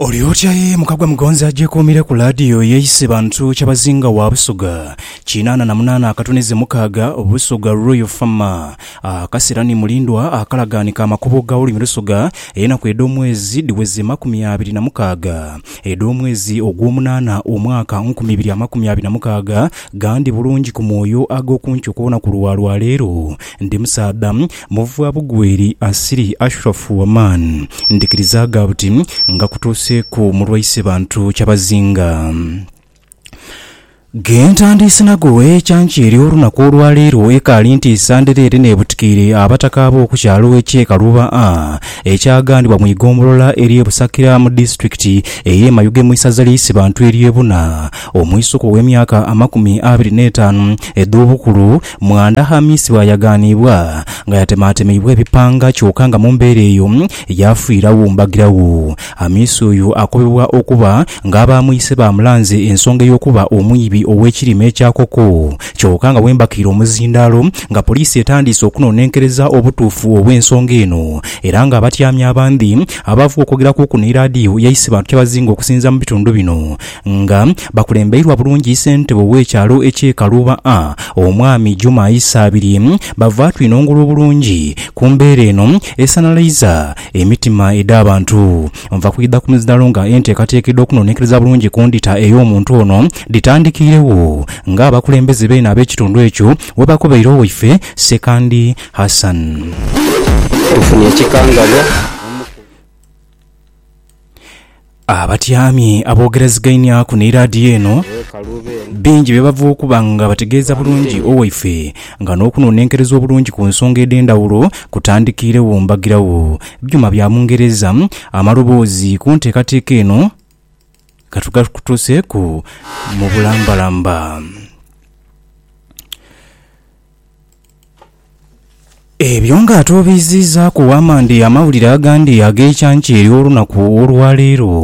Oli otya ye mukagwa mugonzi agyekuumire ku laadiyo eyeeyise bantu kyabazinga wa Busoga kinaana na munaana akatunizi mukaaga Busoga Royal Farmer akasira ni mulindwa akalagaani ka makubo ga olulimi Lusoga enaku edh'omwezi dhiweze makumi abiri na mukaaga edh'omwezi ogw'omunaana omwaka nkumi ibiri amakumi abiri na mukaaga gandi bulungi ku mwoyo ag'okunkyuka olunaku lwa lwaleero ndi musaadha Muvwa bugweri Asiri Ashrofu Oman ndhikiriza gha buti nga kutuuseeku mulwaise bantu kyabazinga. Ghe ntandiise nago ekyanki ery'olunaku olwaleero ekaali ntiisa ndhereere n'ebutikiire abataka ab'oku kyalo eky'e Kaluba A ekyaghanibwa mu igombolola ery'e Busakira mu disitulikiti ey'e Mayuge mu isaza ly'e Isibantu ery'e Buna omwisuka ow'emyaka amakumi abiri n'etaanu edh'obukulu Mwanda Hamis bw'ayagaaniibwa nga yatemaatemeibwa ebipanga kyoka nga mu mbeera eyo yaafiiragho mbagiragho. Hamis oyo akobebwa okuba nga aba mwise baamulanze ensonga ey'okuba omwibi ow'ekirime kya koko kyoka nga bwembakiire omuzindaalo nga poliisi etandiise okunonenkereza obutuufu obw'ensonga eno era nga abatyami abandhi abaavugha okwogerakuku ni Iradio Yaisibatu Kyabazinga okusinziira mu bitundu bino Nga bakulembeirwa bulungi Ssentebe ow'ekyalo eky'e Kaluuba A, Omwami Juma Isaabirye, bava twinongolwa obulungi ku mbeera eno esanhalaiza emitima edh'abantu. Nva kwidha ku mizdalo nga enteekateeka edh'okunonekereza bulungi ku ndhita ey'omuntu ono dhitandikiiregho nga abakulembeze beene ab'ekitundu ekyo webakobeire owaife Ssekandi Hassan. Tufunye ekikangalwa omukugu. Abatyami aboogerazigaineaku ni laadiyo eno bingi bye bava okuba nga bategeeza bulungi owaife nga n'okunonenkereza obulungi ku nsonga edh'endhawulo kutandikiiregho mbagirawo. Byuma bya Bungereza amaloboozi ku nteekateeka eno ka tugakutuuseeku mu bulambalamba. Ebyo nga atwobiiziizaaku Wamandi amawulire agandi ag'ekyankya ery'olunaku olwaleero,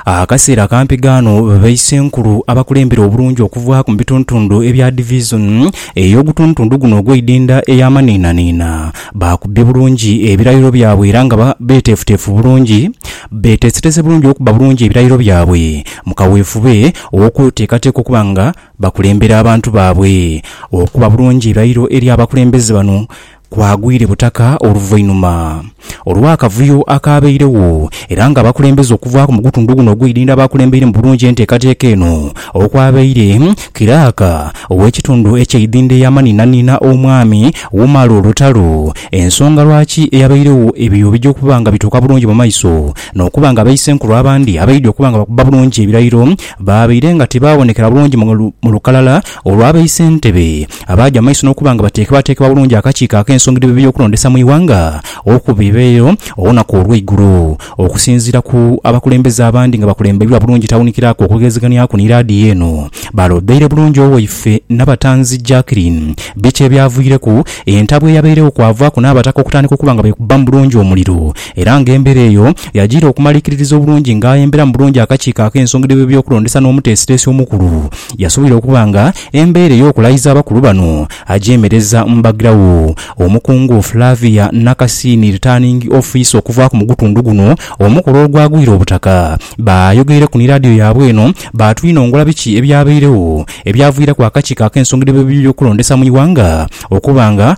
akaseera kampi ghano baisenkulu abakulembera obulungi okuva mu bitundutundu ebya Divizoni ey'ogutundutundu guno ogw'eidinda eya Maniinaniina baakubye bulungi ebirayiro byabwe era nga beeteefuteefu bulungi beeteesetese bulungi okubba bulungi ebirayiro byabwe mu kaweefube ow'okweteekateeka okuba nga bakulembera abantu baabwe. Okuba bulungi irairo eri abakulembeze bano kwagwire butaka oluvainuma olw'akavuyo akaabeiregho era nga abakulembeze okuvaaku mu gutundu guno ogw'eidhindha baakulembeiremu bulungi enteekateeka eno okwabaire Kiraaka ow'ekitundu eky'eidhindha eyamanhinanhina Omwami Umaro Lutalo ensonga lwaki eyabeiregho ebyo bija okuba nga bituuka bulungi mu maiso n'okuba nga Baisenkulu abandi abaidhi okuba nga bakuba bulungi ebirairo baabaire nga tibaabonekera bulungi mu lukalala olwa ba isentebe abaaja mu maiso n'okuba nga bateekebwateekebwa bulungi akakiiko ak'ensonga dh'ebyokulondesa mu ighanga okubiibayo olunaku olweigulo okusinziira ku abakulembeze abandi nga bakulembeirwa bulungi Tawunikilaku okugezeganyaku ni laadiyo eno balobeire bulungi owaife Nabatanzi Jackeline biki ebyavwireku entabwe eyabeiregho kwavaaku n'abataka okutandika okuba nga beekubbamu bulungi omuliro Era nga embera eyo yajiira okumalikiririza obulungi nga aemberamu bulungi akakiiko ak'ensonga dh'ebyokulondesa n'omuteesiteesi omukulu, yasoboire okuba nga embeera ey'okulayiza abakulu bano agyemereza mu baghiragho Omukungu Flavia Nakasiini Returning Officer okuvaaku mu gutundu guno omukola ogwagwire obutaka. Baayogeireku ni laadiyo yaabwe eno baatwinongola biki ebyabeiregho ebyaviiraku akakiiko ak'ensonga dh'ebyokulondesa mu ighanga okuba nga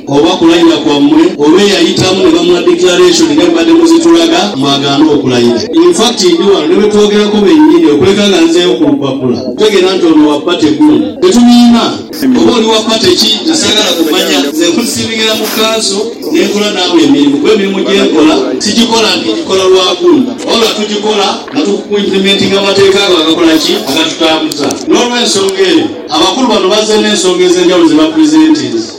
Oba kulayira kwamwe oba eyayitamu ne bamuwa declaration nga bwemubadde muzitulaga mwagaana okulayira. In fact ndi wano ne betwogerako bennyini okuleka nga nzeeyo ku lupapula kutegeera nti ono wa party gundi. Tetubiina. Oba oli wa party ki nze saagala kumanya. Nze nkusiivingira mu kanso ne nkola naawe emirimu kuba emirimu gye nkola sigikola nti ngikola lwa gundi wabula tugikola nga tukuimplementinga mu mateeka ago agakola ki? Agatutambuza. N'olwensonga eyo abakulu bano bazze n'ensonga ez'enjawulo ze bapresentinze.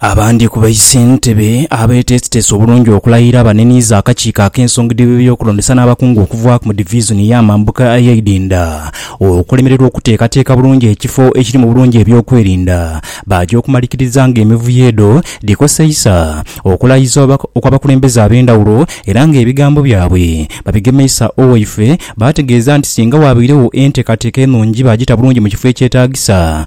Abandi ku baisentebe abeeteesiteesi obulungi okulayira baneniiza akakiiko ak'ensonga dh'ebyokulondesa n'abakungu okuva mu divisoni ey'amambuka ey'eidinda okulemererwa okuteekateeka bulungi ekifo ekiri mu bulungi eby'okwerinda baaja okumalikiriza ng'emivuyo edho dhikoseisa okulayiza okw'abakulembeze ab'endhawulo era ng'ebigambo byabwe babigemeisa Owaife baategeeza nti singa waabairewo enteekateeka enungi baagita bulungi mu kifo ekyetaagisa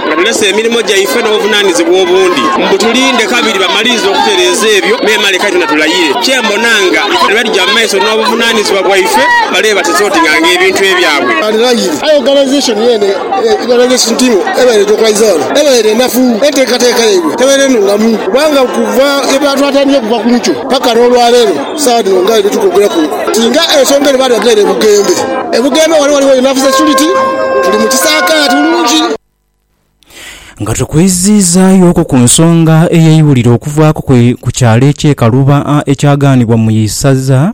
nga tulese emirimo gyaife n'obuvunaanizibwa obundi mbu tulinde kabiri bamalirize okutereeza ebyo memale kati na tulayire. Kye mbona nga bano bwe tuja mu maiso n'obuvunaanizibwa bwaife bale batesotinga ng'ebintu ebyabwe. Arirayiri, aye oganaizeeshoni yeene ebaire n'ensi ntimu ebaire eja okwaiza ghano ebaire nnafu. Enteekateeka yaibwe tebaire nnungamu kubanga okuva lwe baatwatandika okuva ku nkyo paka n'olwaleero Ku saagha dhino nga bwe bitukwogeraku nti nga ensonga eno baali bagighaire e Bugembe. E Bugembe ghano ghaligho Enough Security, tuli mu kisaakaate bulungi. Nga tukwizizaayooku ku nsonga eyeibulire okuvaaku ku kyalo eky'e Kaluba ekyagaanibwa mu isaza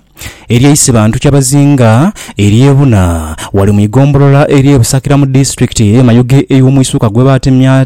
ery'e Isibantu Kyabazinga ery'e Buna ghale mu igombolola ery'e Busakira mu disitulikiti ey'e Mayuge ey'omwisuka gwebatemya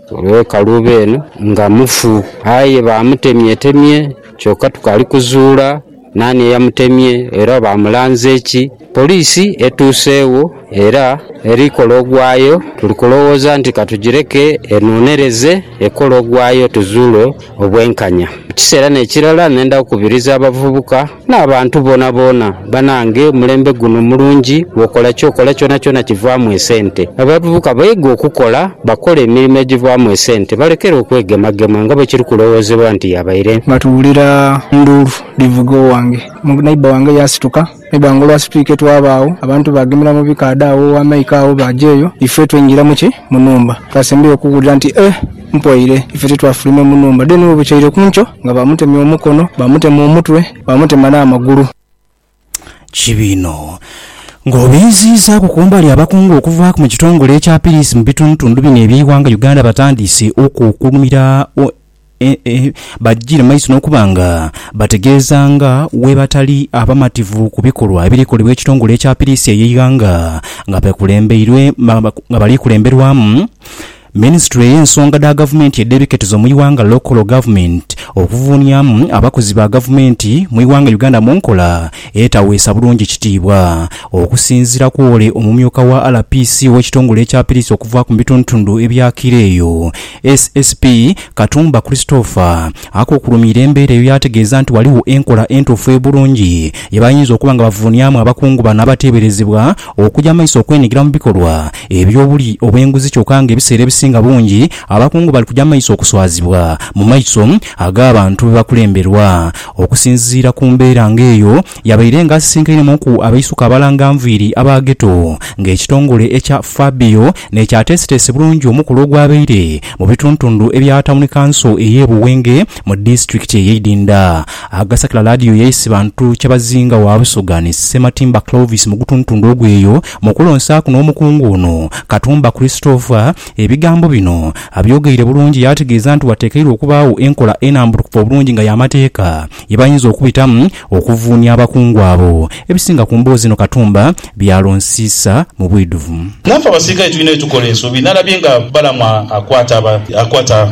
Olw'ekalu beene nga mufu. Aye baamutemyetemye kyoka tukaali kuzuula naani eyamutemye era baamulanze ki. Poliisi etuuseegho era eri kola ogwayo, tuli kulowooza nti katugireke enoonereze ekole ogwayo tuzuule obwenkanya. Mu kiseera n'ekirala nenda kukubiriza abavubuka N'abantu boonaboona, banange omulembe guno mulungi, bw'okola ky'okola kyonakyona kivaamu esente. Abavubuka baige okukola, bakole emirimo egivaamu esente, balekere okwegemagema nga bwe kiri kulowoozebwa nti yabaire. Nga tuwulira nduulu dhivuga owange neighbour wange yaasituka. Neighbour wange olwasitwike twabaagho, abantu baagemera mu bikaadha agho owa Mike agho baaja eyo, ife twaingiramu ki? Mu nhumba. Twasembayo okuwulira nti, Eh! Mpoire ife titwafulwime mu nhumba then webukyaire ku nkyo nga bamutemye omukono, bamutema omutwe, bamutema n'amagulu. Kibi inho. Ng'obinziizaaku kumbali abakungu okuva mu kitongole ekya Piriisi mu bitundutundu bino eby'eighanga Uganda batandiise okukulumira bajjire mu maiso n'okuba nga bategeeza nga bwebatali abamativu ku bikolwa ebiri kolebwa ekitongole ekya Piriisi ey'eighanga nga bali kulemberwamu Minisitule y'ensonga dha gavumenti edh'ebiketizo mu ighanga Local Government okuvuuniamu abakozi ba gavumenti mu ighanga Uganda mu nkola etaweesa bulungi kitiibwa. Okusinziira ku ole omumyuka wa RPC ow'ekitongole ekya Piriisi okuvaaku mu bitundutundu ebyakiira eyo, SSP Katumba Christopher akukulumiire embeera eyo yaategeeza nti ghaligho enkola entuufu ebulungi yebayinza okuba nga bavuuniamu abakungu bano abateeberezebwa okuja maiso okwenigira mu bikolwa Eby'obuli obw'enguzi kyoka nga ebiseera ebisinga bungi abakungu bali kuja maiso okuswazibwa mu maiso ag'abantu be bakulemberwa. Okusinziira ku mbeera ng'eyo, yabaire nga asisinkainemu-ku abaisuka abalanga nviiri aba Ghetto ng'ekitongole ekya FABIO n'ekyateeseteese bulungi omukolo ogwabaire mu bituntundu ebya Tawuni Kanso ey'e Buwenge mu disitulikiti ey'e Idinda. Agasakira Laadiyo yaise bantu kyabazinga wa Busoga ni Ssematimba Clovis mu gutuntundu ogw'eyo Mu kulonsaaku n'omukungu ono, Katumba Christopher ebigambo bino abyogeire bulungi yaategeeza nti wateekeirwa okubaagho enkola enambulukufu obulungi nga y'amateeka ye bayinza okubitamu okuvuunia abakungu abo ebisinga ku mboozi eno Katumba by'alonsiisa mu bwidhuvu. Naffe abasirikale tulina bye tukola ensobi. Nalabye nga Balamu akwata aba, akwata.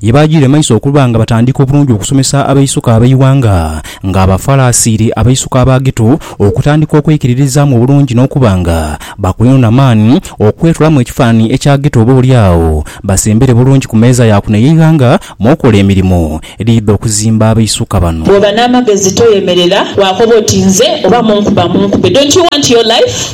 Ye baajiire maiso okuba nga batandika obulungi okusomesa abaisuka ab'eighanga nga Abafarasiri, abaisuka Abagitu, okutandika okweikiririzaamu obulungi n'okuba nga bakwino na maani okwetolamu ekifaananhi ekya Gitu oba oli agho basembere bulungi ku meeza ya kuno ey'eighanga mw'okola emirimo edhidha okuzimba abaisuka bano. Bw'oba n'amagezi toyemerera waakoba oti, Nze oba munkuba munkube, don't you want your life?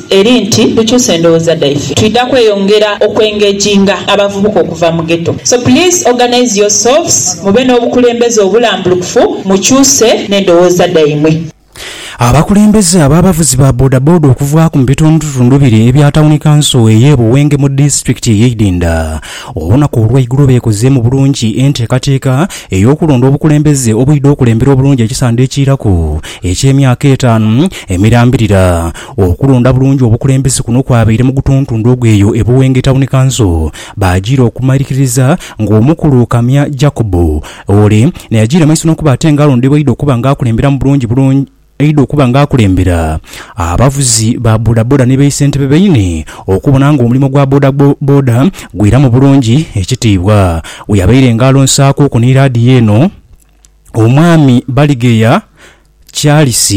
Eri nti tukyuse endhoghoza dhaife twidha kweyongera oku engaginga abavubuka okuva mu ghetto so please organise your selves mube n'obukulembeze obulambulukufu mukyuse n'endhoghoza dhaimwe. Abakulembeze ab'abavuzi ba bodaboda okuvaaku mu bitundutundu biri ebya tawuni kanso ey'e Buwenge mu disitulikiti ey'e Idinda olunaku olw'eigulo beekozeemu bulungi enteekateeka ey'okulonda obukulembeze obwidha okulembera obulungi ekisande ekiiraku eky'emyaka etaanu emirambirira Okulonda bulungi obukulembeze kuno kwabaire mu gutuntundu ogw'eyo e Buwenge Tawuni Kanso, baajiire okumaliririza ng'omukulu Kamya Jacob ole n'eyajiire maiso n'okuba ate ng'alondebwa aidha okuba ng'akulemberamu bulungi bulungi aidha okuba ng'akulembera abavuzi ba bodaboda ni baisentebe baine okubona ng'omulimo gwa boda boda gwiramu bulungi ekitiibwa. Bwe yabaire ng'alonsaaku ku ni laadiyo eno, Omwami Baligheya, Charles,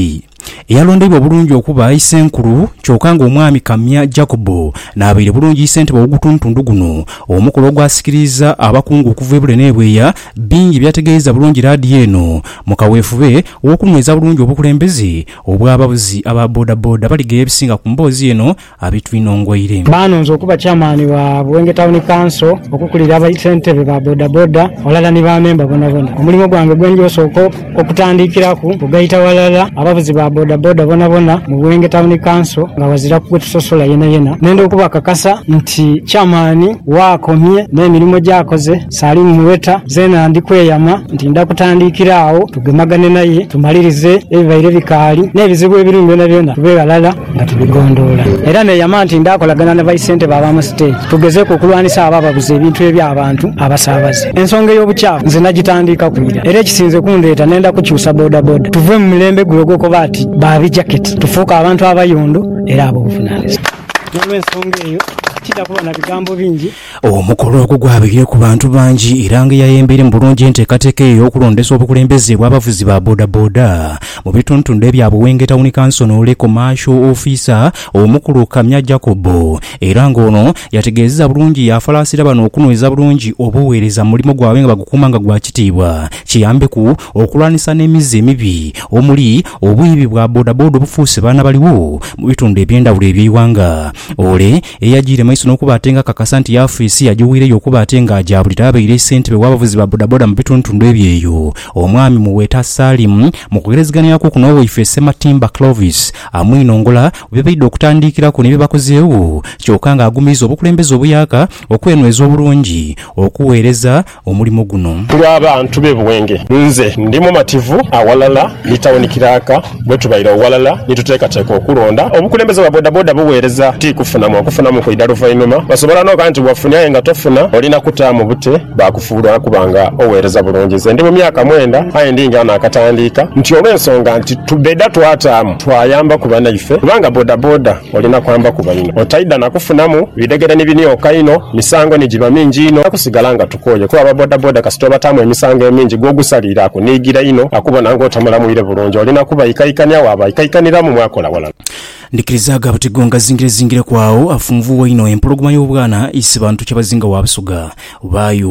eyalondeibwa obulungi okuba Isenkulu kyoka nga Omwami Kamya Jacob n'abaire bulungi Isentebe w'ogutundutundu guno, omukolo ogwasikiriiza abakungu okuva ebule n'ebweya bingi ebyategeeiza bulungi laadiyo eno mu kaweefube w'okunhweza bulungi obukulembeze obw'abavuzi aba bodaboda. Baligheera ebisinga ku mboozi eno. abitwinhongweire. Baanonza okuba Chairman wa Buwenge Town Council, okukulira aba Ssentebe ba bodaboda ghalala ni ba memba bonabona. Omulimo gwange gwe ndhi osooka okutandikiraku kugaita ghalala abavuzi ba bodaboda bonabona mu Buwenge Town Council nga ghaziraku gwe tusosola yenayena. Nenda okubakakasa nti Chairman waakomye n'emirimo gy'akoze Salim Muweta zeena ndi kweyama nti nda kutandikira agho tugemagane naye tumalirize ebibaire bikaali n'ebizibu ebirimu byonabyona tube ghalala. nga tubigondhoola era neeyama nti ndaakolagana na baisentebe ab'amasiteegi tugezeeku okulwanisa abo ababuza ebintu eby'abantu abasaabaze. Ensonga ey'obukyafu nze nagitandiikaku ira era ekisinze kundheeta nenda kukyusa bodaboda tuve mu mulembe gule ogw'okuba ati ba bijaketi tufuuke abantu abayondo era ab'obuvunaanyizibwa. N'olwensonga eyo, tija kuba na bigambo bingi Omukolo ogwo gwabaire ku bantu bangi era nga eyayembeiremu bulungi enteekateeka eyo y'okulondesa obukulembeze bw'abavuzi ba bodaboda mu bitundutundu ebya Buwenge Tawuni Kanso n'ole Komaasho ofiisa omukulu Kamya Jacob era nga ono yategeezeza bulungi yaafalaasira bano okunweza bulungi obuweereza mu mulimo gwabwe nga bagukuuma nga gwa kitiibwa kiyambeku okulwanisa n'emize emibi omuli obwiibi bwa bodaboda obufuuse baana baliwo mu bitundu eby'endawulo eby'eighanga ole Eyagiire maiso n'okuba ate nga akakasa nti yaafiisi yagiwiireyo okuba ate nga agyabulira abaire ssentebe w'abavuzi ba bodaboda mu bitundutundu ebyo eyo, omwami Muweta Salim mu kughelezeganhiraku okwo n'owaife Ssematimba Clovis amwinongola ku bye baidha okutandiikiraku ni bye bakozeegho kyoka ng'agumiriza obukulembeze obuyaka okwenhweza obulungi okuweereza omulimo guno. Ku lwa bantu b'e Buwenge, nze ndi mumativu aghalala ni tawuni kiraaka bwe tubaire oghalala ni tuteekateeka okulonda obukulembeze bwa bodaboda bugheereza ti kufunamu okufunamu kwidha luvainhuma. Osobola n'okoba nti wafuni aye nga tofuna, olina kutaamu bute baakufuula okuba nga ogheereza bulungi. Nze ndi mu myaka mwenda aye ndi nga naakatandiika nti olw'ensonga nti tubedha twataamu twayambaku banaife kubanga bodaboda, Olina kwamba kuba inho otaidha na kufunamu bidhegere ni binioka inho, misango ni giba mingi inho. Tusigala nga tukooye kuba aba bodaboda kasita obataamu emisango emingi gw'ogusaliire akuniigira inho, akubona ng'otamulamwire bulungi. Olina kubaikaikania waabaikaikaniramu mwakola ghalala. Ndikirizaaga buti gwe ongazingirezingireku agho, afunvuuwa inho empologoma y'obwana aise bantu kyabazinga wa Busoga. Baayo.